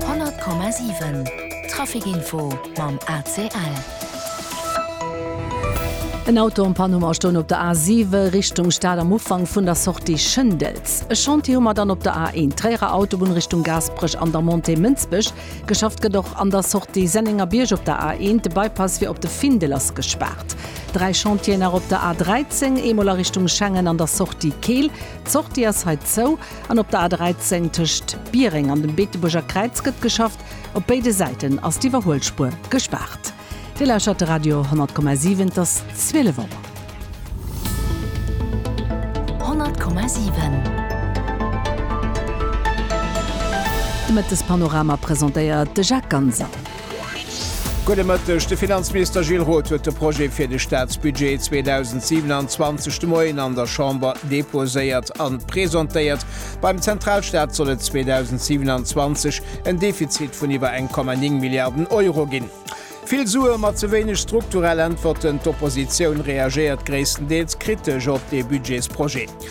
100,7 Trafic Info mam ACL. En Auto am Panuma stoung op der A7 Richtung Stad am Ufank vun der Sortie Schëndels. E Chantier hu mer dann op der A1, Tréierer Autobunn Richtung Gaasperech an der Montée Mënsbech. Geschafft gëtt och an der Sortie Sennengerbierg op der A1. De Bypass fir op de Findel ass gespaart. Dräi Chantieren nach op der A13, eemol a Richtung Schengen an der Sortie Keel. D'Sortie ass hei zou. An op der A 13 tëscht Biereng an dem Beetebuerger Kräiz gëtt geschafft. Op béide Säiten ass d'Iwwerhuelspuer gespaart. Dir lauschtert de Radio 10,7. Et ass 12 Auer. 10,7. De Mëttespanorama presentéiert de Jacques Ganser. Gudde Mëtteg. De Finanzminister Gilles Roth huet de Projet fir de Staatsbudget 2027 de Moien an der Chamber deposéiert a presentéiert. Beim Zentralstaat soll et 2027 en Defizit vun iwwer eng Komma néng Milliarden Euro ginn. Vill Sue ma ze wéineg strukturell Äntwerten, D'Oppositioun reagéiert gréisstendeels kritesch op dee Budgetsprojet.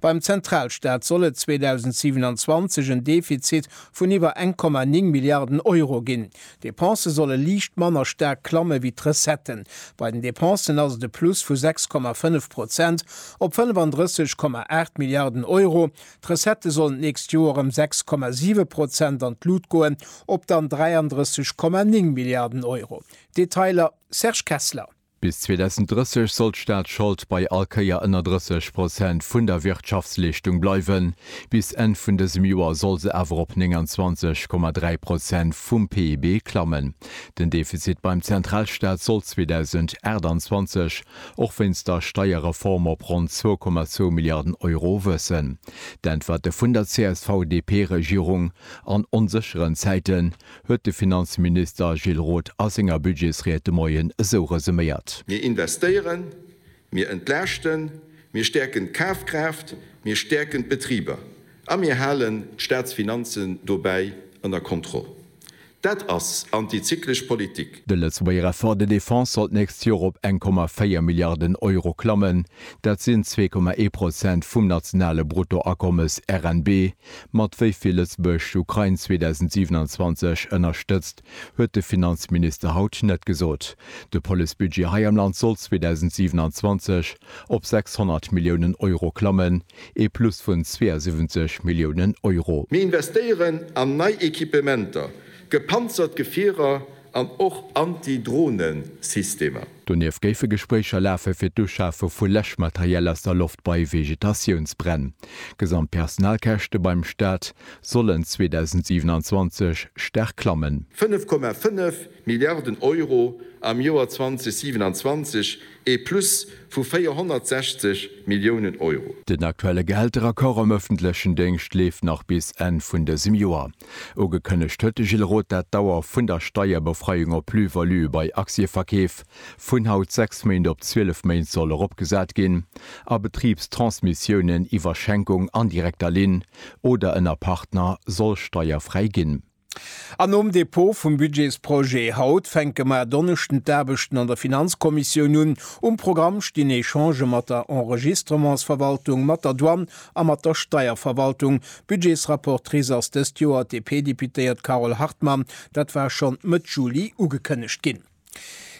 Beim Zentralstaat soll et 2027 en Defizit vun iwwer 1,9 Milliarden Euro ginn. D'Depensë solle liicht manner staark klamme wéi d'Recetten. Bei den Depensen ass et e Plus vu 6,5 Prozent op 35,8 Milliarden Euro. D'Recettë sollen d'nächst Joer ëm 6,7 Prozent an d'Lut goen, op dann 33,9 Milliarden Euro. Detailer Serge Kessler. Bis 2030 soll d'Staatschold bei all Kéier ënner 30 Prozent vun der Wirtschaftsleeschtung bleiwen. Bis Enn vun dësem Joer soll se awer op 29,3 Prozent vum PIB klammen. Den Defizit beim Zentralstaat soll 2028 och wéinst der Steierreform op ronn 2,2 Milliarden Euro wëssen. D'Äntwerte vun der CSV-DP-Regierung an onsécheren Zäiten? huet de Finanzminister Gilles Roth a senger Budgetsried de Moien esou resuméiert. Mir investéieren, mir entlaaschten, mir stäerken d'Kafkraaft, mir stäerken d'Betriber a mir halen d'Staatsfinanzen dobäi ënner Kontroll. Dat ass antizyklesch Politik. De Lëtzebuerger Effort de défense soll d'nächst Joer op eng Komma véier Milliarden Euro klammen. Dat sinn zwee Komma ee Prozent vum nationale Bruttoakommes, RNB, Mat wéi vill Lëtzebuerg d'Ukrain 2027 ënnerstëtzt, huet de Finanzminister haut net gesot. De Policebudget hei am Land soll 2027 op 600 Milliounen Euro klammen, ee Plus vun 72 Milliounen Euro. Mir investéieren an nei Equipementer. Gepanzert Gefierer an och Anti-Drohne-Systemer. Donieft géife Gespréicher lafe fir d'Uschafe vu Läschmaterial aus der Loft bei Vegetatiounsbränn. D'gesamt Personalkäschte beim Staat sollen 2027 staark klammen. 5,5 Milliarden Euro am Joer 2027, ee Plus vu 460 Milliounen Euro. Den aktuelle Gehälteraccord am ëffentlechen Déngscht leeft nach bis Enn vun dësem Joer. Ugekënnegt huet de Gilles Roth dat d'Dauer vun der Steierbefreiung op Plus-valuë bei Aktieverkeef vun haut 6 Méint op 12 Méint soll eropgesat ginn a Betribs-Transmissiounen iwwer Schenkung an direkter Linn oder ënner Partner soll steierfräi ginn. An nom Dépôt vum Budgetsprojet haut fänke mer Donneschden d'Aarbechten an der Finanzkommissioun un. Um Programm stinn Echangë mat der Enregistrementsverwaltung, mat der Douane A mat der Steierverwaltung. Budgetsrapportrice ass dëst Joer d'DP-Deputéiert Carole Hartmann. Dat war schonn Mëtt Juli ugekënnegt ginn.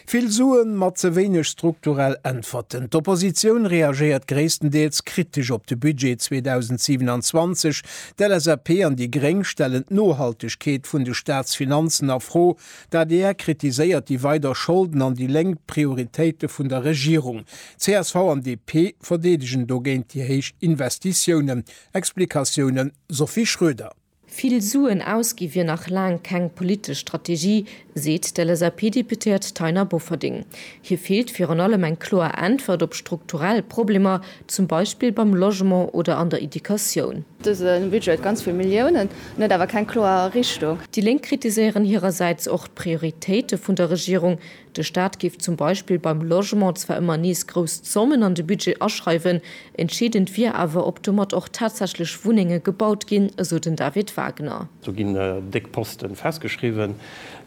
Vill Suen, ma ze wéineg strukturell Äntwerten. D'Oppositioun reagéiert gréisstendeels kritesch op de Budget 2027. D'LSAP an déi gréng stellen d'Nohaltegkeet vun de Staatsfinanzen a Fro. D'adr kritiséiert déi weider Scholden an déi Lénk d'Prioritéite vun der Regierung. Csv an DP verdeedegen dogéint déi héich Investitiounen. Explikatioune Sophie Schroeder. Vill Suen ausgi wier nach laang keng politesch Strategie, seet d'LSAP-Deputéiert Taina Bofferding. Hir feelt virun allem eng kloer Äntwert op strukturell Problemer, Zum Beispill beim Logement oder an der Educatioun. Dëse Budget huet ganz vill Milliounen, en huet awer keng kloer Richtung. Déi Lénk kritiséieren hirersäits och d'Prioritéite vun der Regierung. De Staat géif zum Beispill beim Logement zwar ëmmer nees grouss Zommen an de Budget aschreiwen, entscheedend wier awer, ob domat och tatsächlech Wunnenge gebaut ginn, esou den David Wagner. Do ginn déck Posten festgeschriwwen,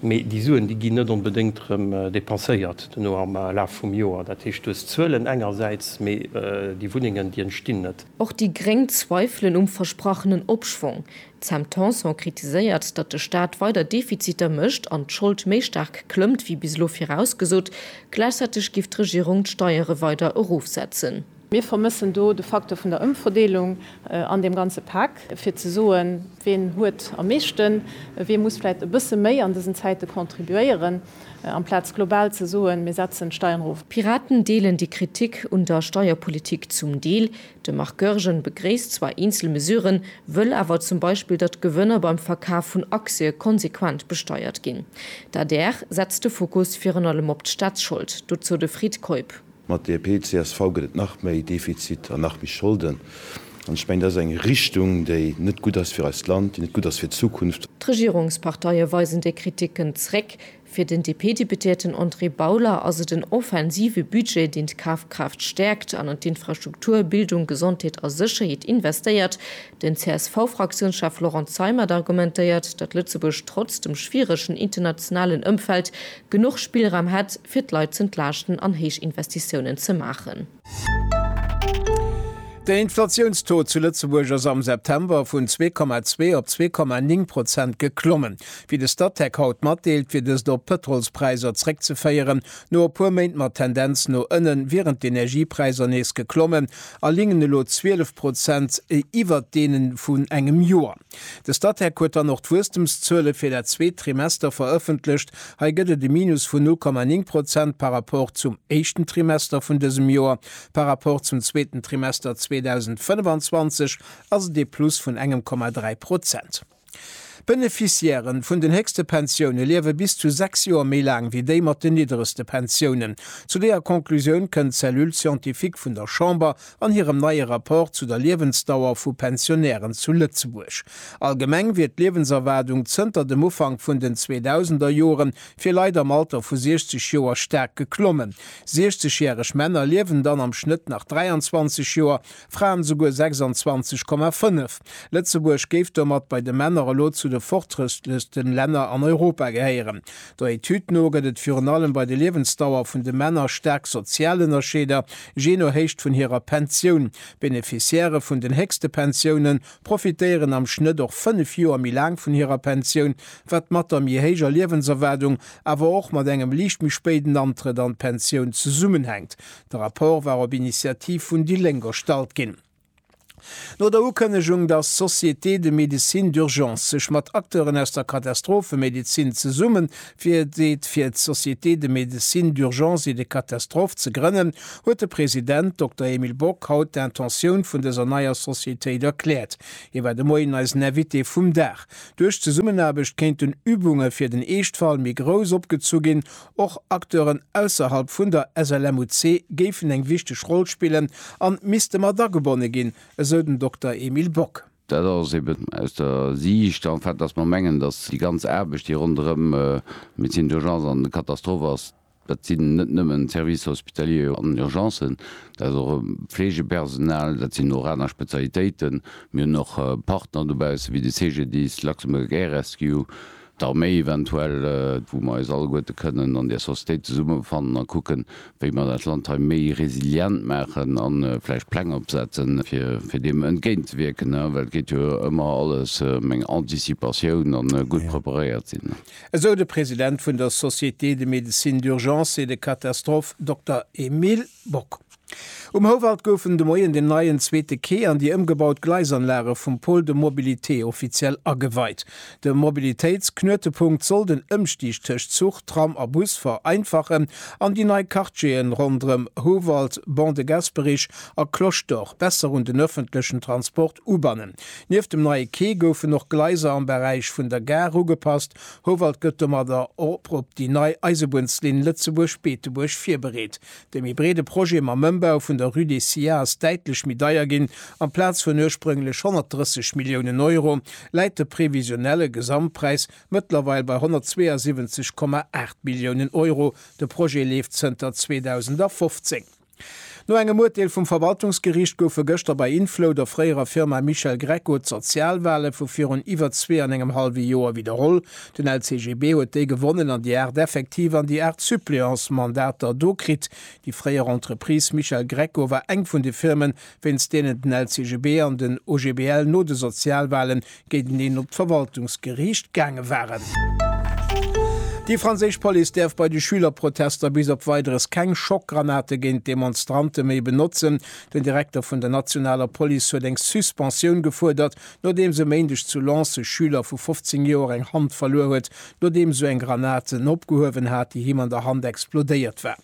Mee déi Suen, déi ginn net onbedéngt erëm depenséiert duerno am Laf vum Joer. Dat heescht, du hues Zuelen engersäits, mee déi Wunnengen, déi entstinn net. Och déi gréng zweifelen um versprachenen Opschwong. D'Sam Tanson kritiséiert, datt de Staat weider Defiziter mécht an d'Schold méi staark klëmmt wéi bis elo virausgesot. Gläichzäiteg giff d'Regierung d'Steiere weider erofsetzen. Mir vermëssen do de Facteur vun der Ëmverdeelung an deem ganze Pak, fir ze soen, wien huet am meeschten, wien muss vläicht e bësse méi an dësen Zäite contribuéieren, amplaz global ze soen, mir setzen d'Steieren erof. D'Piraten deelen déi Kritik un der Steierpolitik zum Deel. De Marc Goergen begréisst zwar eenzel Mesuren, wëll awer zum Beispill, datt d'Gewënner beim Verkaf vun Aktië konsequent besteiert ginn. D'adr setzt de Fokus virun allem op d'Staatsschold, dozou de Fred Keup. Mat DP, csv gëtt et nach méi Defizit an nach méi Scholden. An ech mengen, dat ass eng Richtung, déi net gutt ass fir eist Land, déi net gutt ass fir d'Zukunft. D'Regierungsparteie weisen déi Kriticken zréck. Fir den DP-Deputéierten André Bauler ass et en offensive Budget, deen d'Kafkraaft stäerkt an an d'Infrastruktur, Bildung, Gesondheet a Sécherheet investéiert. Den CSV-Fraktiounschef Laurent Zeimet argumentéiert, datt Lëtzebuerg trotz dem schwieregen internationalen Ëmfeld genuch Spillraum hätt, fir d'Leit z'entlaaschten an héich Investitiounen ze maachen. Den Inflatiounstaux zu Lëtzebuerg ass am September vun zwee Komma zwee op zwee Komma néng Prozent geklommen. Wéi de Statec haut matdeelt, wier dëst op d'Pëtrolspräisser zréckzeféieren, No e puer Méint mat Tendenz no ënnen wieren d'Energiepräisser nees geklommen a lingen elo 12 Prozent iwwert deene vun engem Joer. De Statec huet dann och d'Wuesstemszuele fir dat zweet Trimester verëffentlecht. Hei gëtt et e Minus vun 0,9 Prozent par Rapport zum éischten Trimester vun dësem Joer. Par Rapport zum zweeten Trimester 2025 ass et ee Plus vun engem Komma 3 Prozent. D'Beneficiairen vun den héchste Pensioune liewe bis zu sechs Joer méi laang wéi déi mat den nidderegste Pensiounen. Zu deeër Conclusioun kënnt d'Cellule scientifique vun der Chamber an hirem neie Rapport zu der Liewensdauer vu Pensionären zu Lëtzebuerg. Allgemeng wier d'Liewenserwaardung zënter dem Ufank vun den 2000er Jore fir Leit am Alter vu 60 Joer staark geklommen. Siechzegjäreg Männer liewen dann am Schnëtt nach 23 Joer, Fraen souguer 26,5. Lëtzebuerg géif domat bei de Männer elo zu de fortrëstlechsten Länner an Europa gehéieren. Der Etüd no gëtt et virun allem bei de Liewensdauer vun de Männer staark sozial Ënnerscheeder, jee no Héicht vun hirer Pensioun. D'Beneficiairë vun den héchste Pensioune profitéieren am Schnëtt och 5 Joer méi laang vun hirer Pensioun, wat mat der méi héijer Liewenserwaardung, awer och mat engem liicht méi spéiden Antrëtt an d'Pensioun zesummenhänkt. De Rapport war op Initiativ vun déi Lénk erstallt ginn. No der Ukënnegung, datt d'Société de médecine d'urgence sech mat Acteuren aus der Katastrophemedezin zesummen virdeet fir d'Société de médecine d'urgence et de catastrophe ze grënnen, huet de President, Dokter Emile Bock, haut d'Intentioun vun dëser neier Sociétéit erkläert. Hie war de Moien eisen Invité vum Dag. Duerch d'Zesummenaarbecht kéinten Übunge fir den Eeschtfall méi grouss opgezu ginn Och Acteuren ausserhalb vun der SLMUC géifen eng wichteg Roll spillen an misste mat agebonne ginn, esou den Dokter Emile Bock. Dat ass eben aus der Siicht en fait, datt mer mengen, datt déi ganz Aarbecht, déi ronderëm d'Médecine d'urgence an de Katastrophe ass, dat sinn net nëmmen d'Services hospitaliers an Urgencen, dat ass och e Fleegepersonal, dat sinn och aner Spezialitéiten. Mir hunn och Partner dobausse wéi de CGDIS, Luxembourg Air Rescue, d'Arméi eventuell, wou mer eis alleguerte kënnen an där Sociétéit zesummefannen a kucken, wéi mer dat Land hei méi resilient maachen a vläicht Pläng opsetzen, fir deem entgéintzewierken, well et geet jo ëmmer alles ëm eng Anticipatioun a gutt preparéiert sinn. Esou de President vun der Société de médecine d'urgence et de catastrophe Dokter Emile Bock. Um Houwald goufen de Moien den neien zweete Quai an déi ëmgebaut Gleisanlage vum Pôle de mobilité offiziell ageweit. De Mobilitéitsknuetepunkt soll den Ëmstig tëscht Zuch, Tram a Bus vereinfachen an déi nei Quartiere ronderëm Houwald, Ban de Gasperich a Cloche d'Or besser un den ëffentlechen Transport ubannen. Nieft dem neie Quai goufen och Gleiser am Beräich vun der Gare ugepasst. Houwald gëtt domadder op op déi nei Eisebunnslinn Lëtzebuerg-Beetebuerg virbereet. De méi breede Projet mam Ëmbau vun der Rue des Sillats ass däitlech méi deier ginn, amplaz vun ursprünglech 130 Milliounen Euro läit de previsionelle Gesamtpräis mëttlerweil bei 172,8 Milliounen Euro. De Projet leeft zënter 2015. No engem Urteel vum Verwaltungsgeriicht goufe gëschter bei Inflow, der fréierer Firma Michel Greco, d'Sozialwale vu virun iwwer zwee an engem hallwe Joer widderholl. Den LCGB huet déi gewonnen an déi 8 effektiv an déi 8 suppléance Mandater do kritt. Déi fréier Entreprise Michel Greco war eng vun de Firmen, wéinst deenen den LCGB an den OGBL no de Sozialwalen géinteneen op d'Verwaltungsgeriicht gaange waren. Déi franséisch Police däerf bei de Schülerprotester bis op Weideres keng Schockgranate géint d'Demonstrante méi benotzen. Den Direkter vun der nationaler Police huet eng Suspensioun gefuerdert, Nodeems e Méindeg zu Lens e Schüler vu 15 Joer eng Hand verluer huet, nodeems sou eng Granat en opgehuewen hat, déi him an der Hand explodéiert war.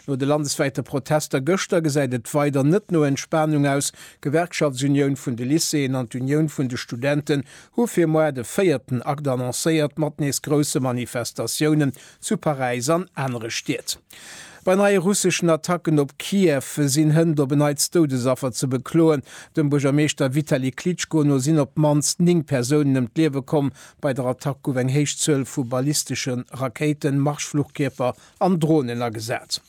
No de landeswäite Protester gëschter gesäit et weider net no Entspanung aus. D'Gewerkschaftsunioun vun de Lycéeën an d'Unioun vun de Studenten hu fir moar de véierten Akt annoncéiert, mat nees grousse Manifestatiounen zu Paräis an anere Stied. Bei neie russeschen Attacken op Kiew sinn hënt op en neits Doudesaffer ze bekloen. Dem Buergermeeschter Vitali Klitschko no sinn op d'mannst 9 Persounen ëm d'Liewe komm. Bei der Attack gouf eng héich Zuel vu ballistesche Rakéiten, Marschfluchkierper an Dronen agesat.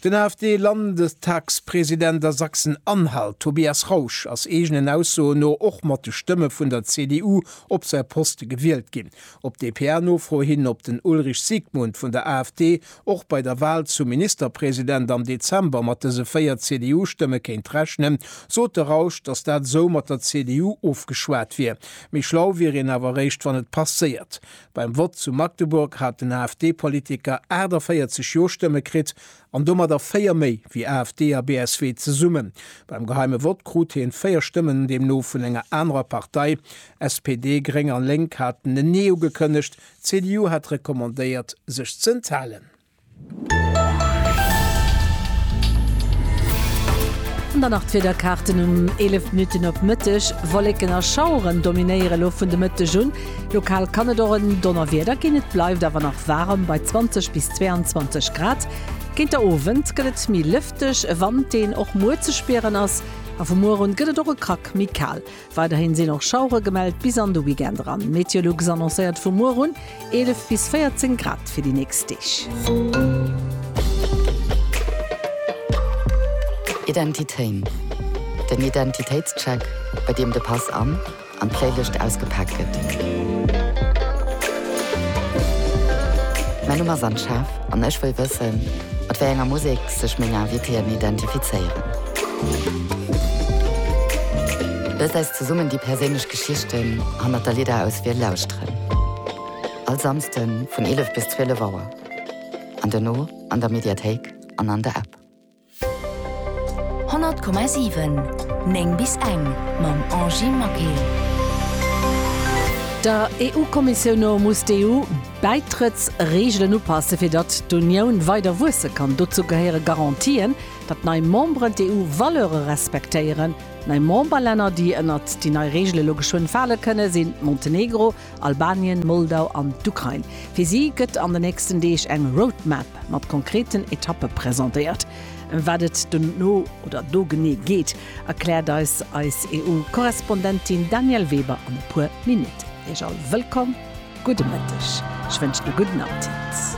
Den AfD-Landestagspresident a Sachsen-Anhalt, Tobias Rausch, ass eegenen Aussoen no och mat de Stëmme vun der CDU op säi Poste gewielt ginn. Op dpa-Nofro hin, ob den Ulrich Siegmund vun der AfD och bei der Wal zum Ministerpresident am Dezember mat dëse 4 CDU-Stëmme kéint rechnen, sot de Rausch, datt dat esou mat der CDU ofgeschwat wier. Méi schlau wier een awer eréischt, wann et passéiert. Beim Vott zu Magdeburg hat den AfD-Politiker 48 Jo-Stëmme kritt an domadder 4 méi wéi AfD a BSW zesummen. Beim geheime Vott krut hien 4 Stëmmen deemno vun enger anerer Partei. SPD, Gréng an Lénk haten en Nee ugekënnegt, d'CDU hat recommandéiert sech z'enthalen. An dann nach d'Wiederkaarten um 11 Minutten op Mëtteg, Wolleken a Schaueren dominéiere lo vun de Mëtteg un. Lokal kann et och en Donnerwieder ginn, et bleift awer nach waarem bei 20 bis 22 Grad. Géint der Owend gëtt et méi lëfteg, e Wand deen och muer ze spieren ass a vu muer un gëtt et och e Krack méi kal. Weiderhin sinn och Schauere gemellt bis an de Weekend eran. Meteolux annoncéiert vu muer un 11 bis 14 Grad fir déi nächst Deeg. Identitéin, den Identitéitscheck, bei deem de Pass an an d'Playlëscht ausgepaakt gëtt. Mäin Numm ass Anne Schaaf an ech wëll wëssen, mat wéi enger Musek. sech meng Invitéen identifizéieren. Looss äis zesummen déi perséinlech Geschichten hannert der Lidderauswiel lauschteren. All Samsden vun 11 bis 12 Auer an dono an der Mediathéik an an der App. 100,7, 9 bis eng mam Angie Maquet. Der EU-Kommissioun no muss d'EU D'Bäitrëttsreegelen upassen, fir datt d'Unioun weider wuesse kann. Dozou gehéiere Garantien, datt nei Memberen d'EU-Valeure respektéieren. Nei Memberlänner, déi ënnert déi nei Reegele lo geschwënn fale kënnen, sinn Montenegro, Albanien, Moldau an d'Ukrain. Fir si gëtt an den nächsten Deeg eng Roadmap mat konkreten Etappe presentéiert. Ëm wat et dono oder do genee geet, Erkläert eis eis EU-Korrespondentin Danièle Weber an e puer Minutten. Iech all wëllkomm, gudde Mëtteg, ech wënschen e gudden Appetit.